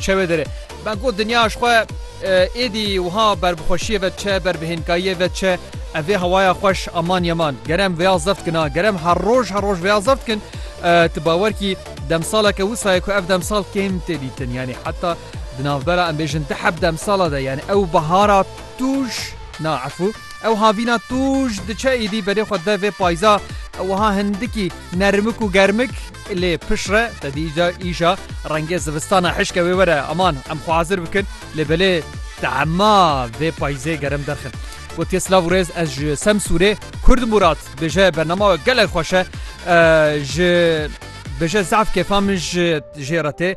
Çewê derê. Me got dinya ji xwe êdî wiha ber bi xweşiyê ve diçe, ber bi hênkayiyê ve diçe. Ev vê hewaya xweş aman yeman. Ger em vêya zeft kin a, ger em her roj her roj vêya zeft kin, tu bawer kî demsaleke wisa ye ku ev demsal kêm tê dîtin. Yanî heta di navbera em bêjin di heb demsala de yanî ew bihara tûj na efû ew havîna tûj diçe êdî berê xwe de vê payza wiha hindikî nermik û germik Lê pişt re te dîca îşa rengê zivistana hişke wê were aman em xwe hazir bikin lê belê tema vê payîzê germ derxin. Gotiye silav û rêz ez ji Semsûrê Kurd Mûrat bêje bernama we gelek xweş e ji bêje zaf kêfa min ji jê re tê.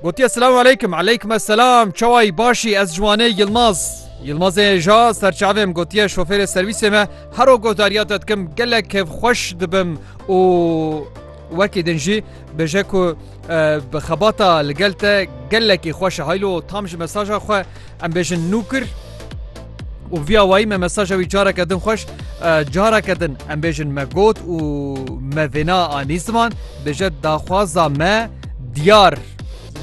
Gotiye Silamu aleykum, aleykme selam, çawayî başî ez ji Wanê Yilmaz. Yilmazê ja serçavê min gotiye şofêrê serwîsê me hero guhdariya te dikim gelek kevxweş dibim û wekî din jî bêje ku bi xebata li gel te gelekî xweş e haylo tam ji mesaja xwe Em bêjin nû kir û vî awayî me mesaja wî careke din xweş careke din em bêjin me got û me vêna anî ziman bêje daxwaza me diyar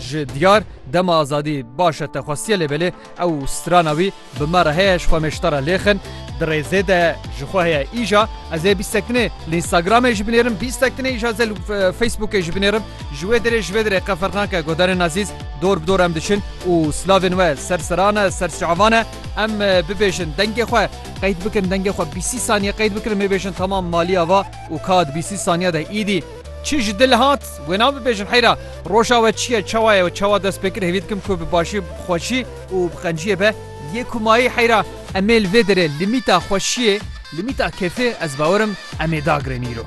ji diyar dema azadî başe te xwestiye lêbelê ew strana wî bi me re heye ji xwe mêştara lêxin di rêzê de ji xwe heye îja ez ê bîstektinê li Instagramê ji binêrim bîstektinê îja ze li Facebookê ji binêrim Ji wê derê ji vê derê qe ferq nake guhdarên ezîz dor bi dor em diçin û slavên we ser seran e, ser çavan e. Em bibêjin dengê xwe qeyd bikin, dengê xwe bîsî saniye qeyd bikin em ê bêjin tamam malî ava û ka di bîsî saniye de îdî çi ji dil hat wê na bibêjin heyra roja we çi ye, çawa ye û çawa dest pê kir hêvî dikim ku bi başî, bi xweşî û bi qenciyê be yê ku mayî heyra em ê li vê derê limîta xweşiyê, limîta kêfê ez bawer im em ê dagrin îro.